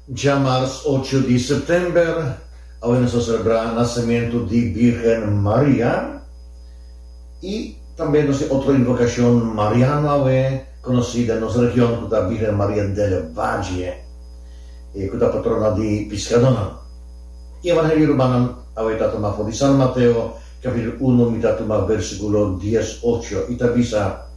Djamars ocho di September, awe nos ta selebrá nasementu di Bírgen Maria, i tambe nos tin otro invokashon mariano awe konosí den nos region ku ta Bírgen Maria del Valle, ku ta patrona di piskadónan. E Evangelio Rubanan awe ta tuma for di San Mateo kapitel uno mi ta tuma versíkulo dies ocho i ta bisa,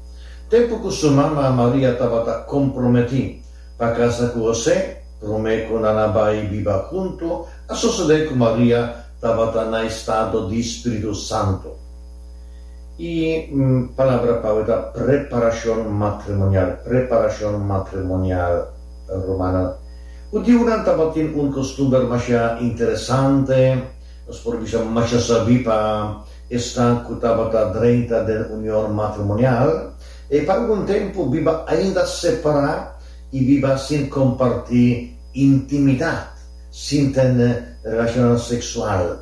Tempu ku su mama Maria tabata komprometí, Pa kasa ku Hosé, promé ku nan a bai biba huntu, a sosodé ku Maria tabata na estado di spiritu santu. E palabra pau ta preparashon matrimonial, preparashon matrimonial, rumannan. Hudiunan tabatin un kostumber masha interesante, nos por bisa masha sabí pa esnan ku tabata drenta den union matrimonial. E pa algun tempu biba ainda separá i biba sin kompartí intimidat, sin tene relashonnan seksual.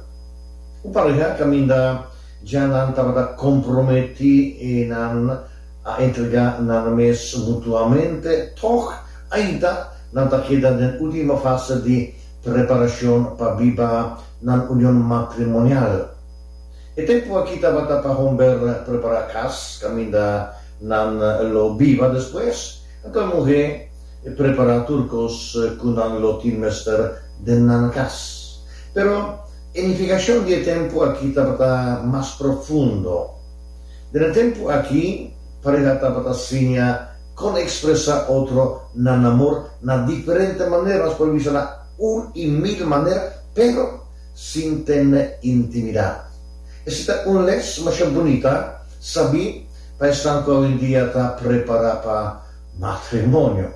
Un pareha kaminda dja nan tabata komprometí i nan a entregá nan mes mutuamente, tòg ainda nan ta keda den último fase di preparashon pa biba nan union matrimonial. E tempu aki tabata pa homber prepara cas caminda nan lo biba despues. Anto e muhe prepara tur cos cu nan lo tin mester den nan cas. Pero e nificacion di e tempu aki tabata mas profundo. Den e tempu aki pareha tabata siña con expresa otro nan amor na diferente maneras, por bisa na un y mil manera, pero. Sintende intimidá. Esi ta un les masha bunita, sabí pa esnan ku awendia ta prepará pa matrimonio.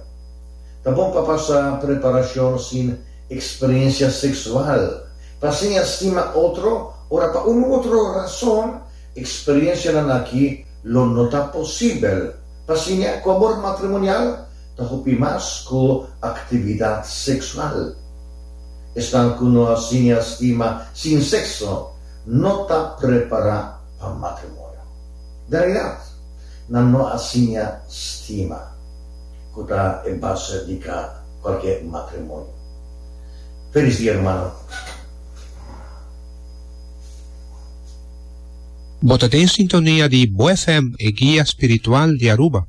Ta bon pa pasa preparashon sin eksperensia seksual, pa siña stima otro ora pa unu otro rason eksperensianan aki lo no ta posibel. Pa siña ku abor matrimonial ta hopi mas ku aktividat seksual. Esnan ku no a siña stima sin sekso no ta prepará pa matrimonio. Den realidad, nan no a siña stima, ku ta e base di ka kualke matrimonio. Felis dia, hermano. Bo ta den sintonia di Bo FM, e guia spiritual di Aruba.